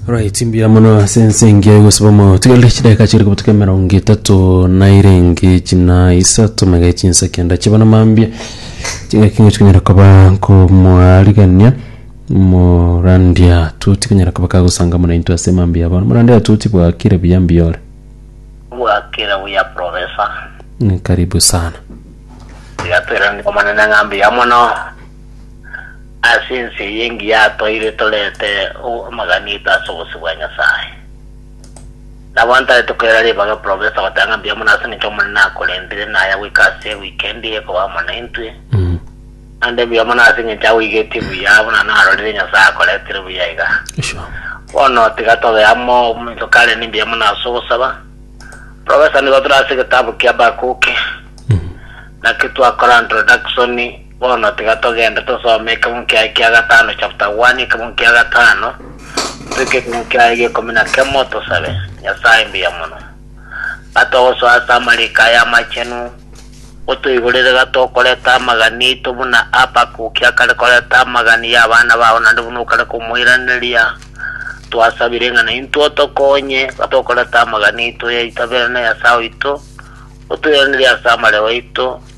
Right, mbuya mono ase ense engiya egosibamo tigerire chidakika chiri kobutuka emerongo etato na irenge china isato mega chinsa kenda chiba na mambia chigakinga chikonyara koba komwarigania morandia tuti konyara koba kagosanga muna intwe ase mambia abo morandia tuti bwakire buya mbiyore bwakire buya profesa Mm, karibu sana tiga twerane omonene ng'a mbuya mono Ase ense eye engiya toire torete amagani aito ase obosio bwa Nyasae. Nabo ntare tokoira ribaga eprofesa goteba ng'a mbuya mono ase eng'encho Omonene akorentire naya goika ase ewikendi eye koba amo naintwe, naende mbuya mono ase eng'encho agoigetie buya buna narorire Nyasae akoretire buya iga. Bono tiga tobe amo ominto kare ni mbuya mono ase ogosaba. Profesa nigo tore ase egetabu kia Habakuki, naki twakora introduction, Bono tiga togende tosome ekebungu kiaye kia gatano chapter one ekebungu kia gatano toike ekebungu kiaye gia ikomi na kemo tosabe Nyasaye mbuya mono gatogosoa ase amariko aye amachenu otoigorere gatokoreta amagani aito buna Habakuki akare koreta amagani y'abana bao naende buna okare komoiraneria twasabire ng'a naintwe otokonye gatokoreta amagani aito yaitaberane Nyasaye oito otoiranerie ase amareo aito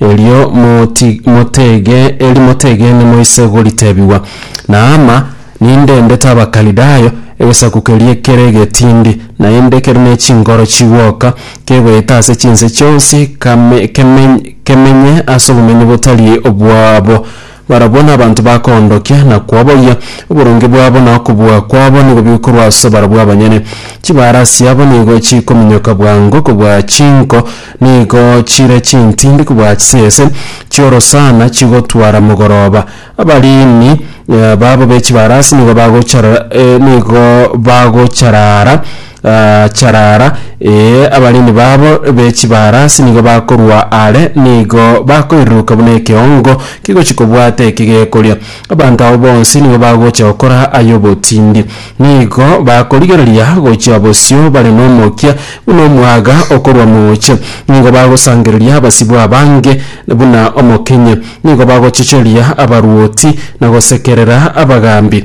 Erio moti motege eri motegene moise goritebigwa, Naama, ninde ndete Abakalidayo, egesaku keria kere egetindi, naende kere ne chinkoro chigwoka, kegoeta ase chinse chionsi, kame keme kemenye ase obomenyi botari obwabo. Barabwo nabanto bakoondokia na koboyia, oboronge bwabo na okobua kwabo nigo bigokorwa ase barabwo abanyene. Chibaara chiabo nigo chikominyoka bwango kobua chinko, nigo chire chintindi kobua chisese chi'orosana chigotwara mogoroba. Abariini babo be chibarasi nigo bagochara nigo bagocharaara. Gaacharara, ee, abarindi baabo be chibaarasi nigo bakorua aare, nigo bakoiruruka buna ekeongo kegochia kobwata eki gekoria. Abanto abo bonsi nigo bagocha gokora ay'obotindi. Nigo bakorigereria gochia bosio bare nomokia buna omwaga okorwa mooche. Nigo bagosangereria abasibwa abange buna omokenye. Nigo bagochocheria abarwoti, na gosekerera abagaambi.